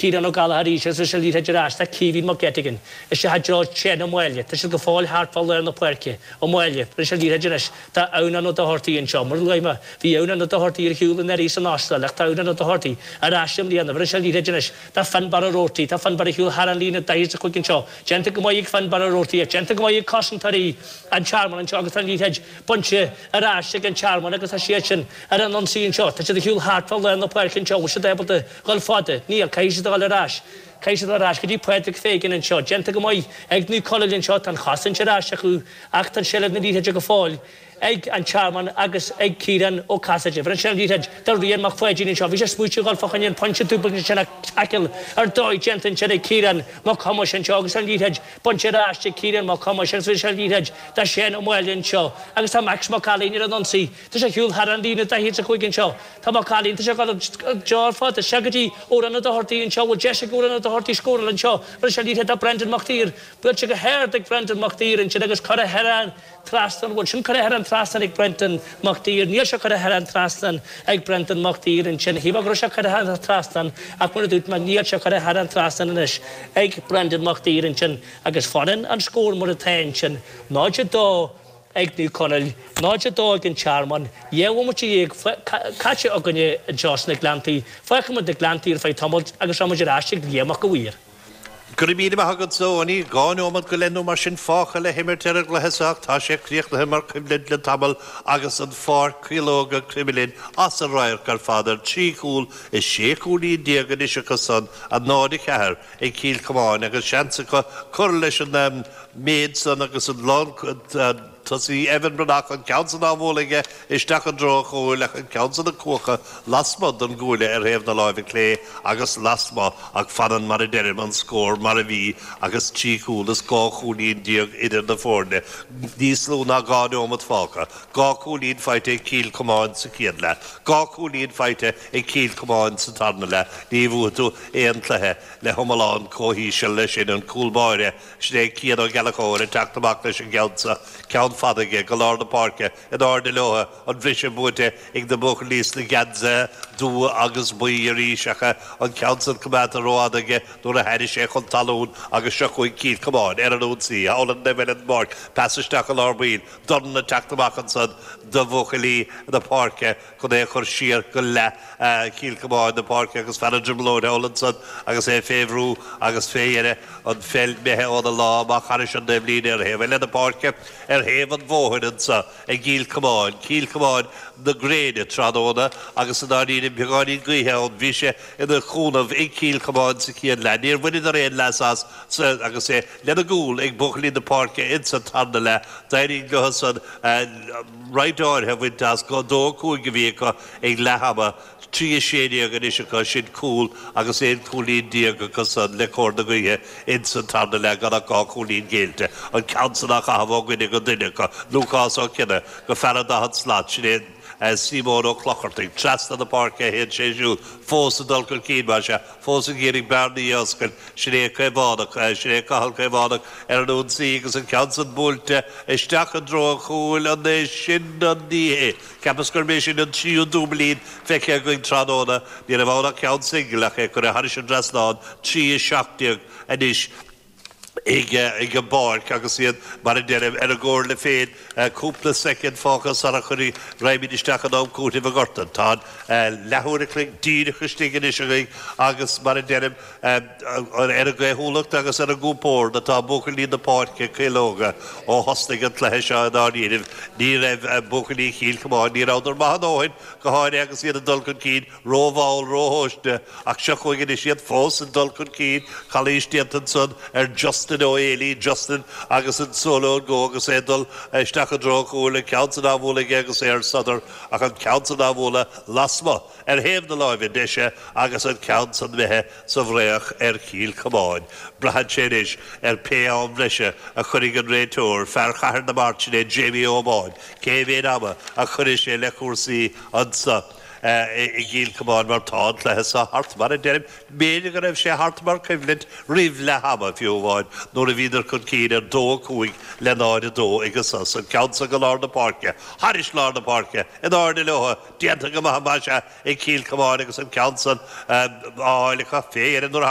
Ciarán Ó Gallachóir faoi ionsaí Caoimhín Caoimhín Mac Eiteagain Is ea Joe Sheáin Ó Maoile Tá siad go fóill thart fá lár na páirce Ó Maoile Bhí sé Oíche idir Anois tá Aonán Ó Dochartaigh anseo Mura luafaidh mé Bhí Aonán Ó Dochartaigh ar shiúl i nDoirí san Astráil Ach tá Aonán Ó Dochartaigh ar ais i mbliana Bhí sé Oíche idir Anois tá Fionnbarra Roarty Tá Fionnbarra ag siúl thar an líne 45 anseo Déanta go maith ag Fionnbarra Roarty Ach déanta go maith ag cosantóirí an Tearmainn anseo Agus tá an liathróid bainte ar ais ag An Tearmann Agus tá siad sin ar an ionsaí anseo Tá siad ag siúl thart fá lár na páirce anseo Bhfuil siad ábalta a dhul i bhfad? Níl. Caithfidh siad a dhul ar ais. Caithfidh siad a dhul ar ais go dtí Pádraig Feighan anseo. Déanta go maith ag Naomh Conaill anseo. Tá an chosaint ar ais acu ach tá seilbh na liathróide go fóill ag an Tearmann agus ag Kieran Ó Casaide. Bhronn sé an liathróid do Rian Mac Pháidín anseo. Bhí sé ag smaoitiú a dhul fá choinne an pointe dúbailte ansin ach taicil ar dóigh déanta ansin ag Kieran Mac Thomáis anseo agus an liathróid bainte ar ais ag Kieran Mac Thomáis agus bhronn sé an liathróid do Shane Ó Máille anseo agus tá Max Mac Ailín ar an ionsaí. Tá sé ag siúl thar an líne daichead is a cúig anseo. Tá Max Mac Ailín, tá sé ag dul ag gearradh isteach go dtí Aonán Ó Dochartaigh anseo, bhfuil deis ag Aonán Ó Dochartaigh scóráil anseo, bhronn sé an liathróid ar Brendan Mac Thír, buailte go hard ag Brendan Mac Thír ansin agus curtha thar an trasnán, bhuel sin curtha thar an trasnán ag Brendan Mac Thír, níl sé curtha thar an trasnán ag Brendan Mac Thír ansin, shílfeá go raibh sé curtha thar an trasnán ach mar a dúirt mé níl sé curtha thar an trasnán anois ag Brendan Mac Thír ansin agus fanann an scór mar atá ansin, 0-2. ag Naomh Conaill, 02 ag an Tearmann, dhá bhomaite dhéag caite againne anseo sna Gleanntaí, fágfaimid na Gleanntaí ar feadh tamaill agus rachaimid ar ais ag Éamonn Mac Mhuiris. Go raibh míle maith agat Seán, dhá neomat go leith nó mar sin fágtha le himirt ar an gcluiche seo ach tá sé críochnaithe mar choimhlint le tamall agus na Piarsaigh Óga Cromghlinn as radharc ar fad ar trí chúl is sé chúilín déag anois acusan, 0, 4. ag Cill Chomáin agus seans acu cur leis an méid san agus an lán tosaí Evan Breathnach an ceann san á bhualadh aige isteach i dtreo a chúil ach an ceann san ag cuaradh lasmuigh don gcuaille ar thaobh na láimhe clé agus lasmuigh ach fanann mar a deirim an scór mar a bhí agus trí chúl is dhá chúilín déag idir na foirne níos lú ná dhá neomat fágtha dhá cúilín faighte ag Cill Chomáin sa chéad leath dhá cúilín faighte Ag Cill Chomáin sa tarna leath ní bhuafaidh tú aon cluiche le hiomlán comh híseal leis sin an cúl báire sin é Cian Ó Gallachóir ag teacht amach leis an gceann seo, ceann fada aige go lár na páirce, in airde leotha, an bhris buaite ag na buachaillí sna geansaithe dubha agus buí arís ach an ceann san coimeádta rófhada aige nuair a tháinig sé chun talún agus seo chugainn Cill Chomáin ar an ionsaí, thall ar imeall den bpáirc, pas isteach i lár baill, dorn ag teacht amach ansan do bhuachaillí na páirce. chun é a chur siar go leath Chill Chomáin, na páirce agus fear an dribleoir thall ansan agus é fé bhrú agus fé dheireadh an pheil imithe óna lámh amach thairis an taobhlíne ar thaobh eile na páirce, ar thaobh an bhóthair ansan i gCill Chomáin, Cill Chomáin na gréine tráthnóna agus i ndáiríre beagáinín gaoithe ann, bhí sé ina chúnamh ag Cill Chomáin sa chéad leath, níor bhaineadar aon leas as san agus é lena gcúl ag buachaillí na páirce insa tarna leath, d'éirigh leothusan. roinnt áirithe a bhaint as, go 2 5 a bhí acu ag leath ama, 3 16 anois acu sin cúl agus 11 cúilín acu san le cóir na gaoithe insa tarna leath gan ach 2 chúilín géillte, an ceann san á chaitheamh ó dhuine go duine acu, Lúcás Ó Cionnaith go fear an 40 slat, sin é Síomón Ó Clochartaigh trasna na páirce a théann sé siúd fós ag dul chun cinn, más ea, fós ag iarraidh bearnaí a oscailt, sin é an Caomhánach, sin é Cathal Caomhánach ar an ionsaí agus an ceann san buailte isteach i dtreo an chúil, an é sin an, ní hea, cheapas gurb é sin an tríú dúiblín feicthe againn tráthnóna, ní raibh ann ach ceann singil ach é curtha thairis an dtrasnán, 3:17 anois. ag an bpáirc agus iad, mar a deirim, ar a gcomhairle féin. Cúpla soicind fágtha sara chun go raghaimid isteach in am cúitimh a ghortann. Tá an leathuair a chloig díreach istigh anois againn agus, mar a deirim, ar a gcaothúlacht agus ar a gcompord atá buachaillí na páirce caológa ó thosnaigh an cluiche seo i ndáiríribh. Ní raibh buachaillí Chill Chomáin, ní rabhadar maith a ndóthain, go háirithe agus iad ag dul chun cinn, rómhall, róthomhaiste, ach seo chugainn anois iad fós ag dul chun cinn, calaois déanta ansan ar Justin Ó hÉalaí, Justin agus an Solo Go agus é ag dul isteach i dtreo an chúil, an ceann san á bhualadh aige agus é ar sodar ach an ceann san á bhualadh lasmuigh ar thaobh na láimhe deise agus an ceann san imithe sa bhfraoch ar Chill Chomáin. Braitheann sé anois ar pé am breise a chuirfidh an réiteoir, fear Chathair na Mairt, sin é Jamie O'Bain, cé mhéid ama a chuirfidh sé le cúrsaí ansan. i gCill Chomáin mar tá an cluiche seo thart, mar a deirim, b'fhéidir go raibh sé thart mar coimhlint roimh leath ama fiú amháin nuair a bhíodar chun cinn ar dó a cúig le náid a dó ag an sos, an ceann san go lár na páirce, thairis lár na páirce, in airde leotha, déanta go maith, más ea, ag Cill Chomáin agus an ceann san á fháil acu féin nuair a thagadh.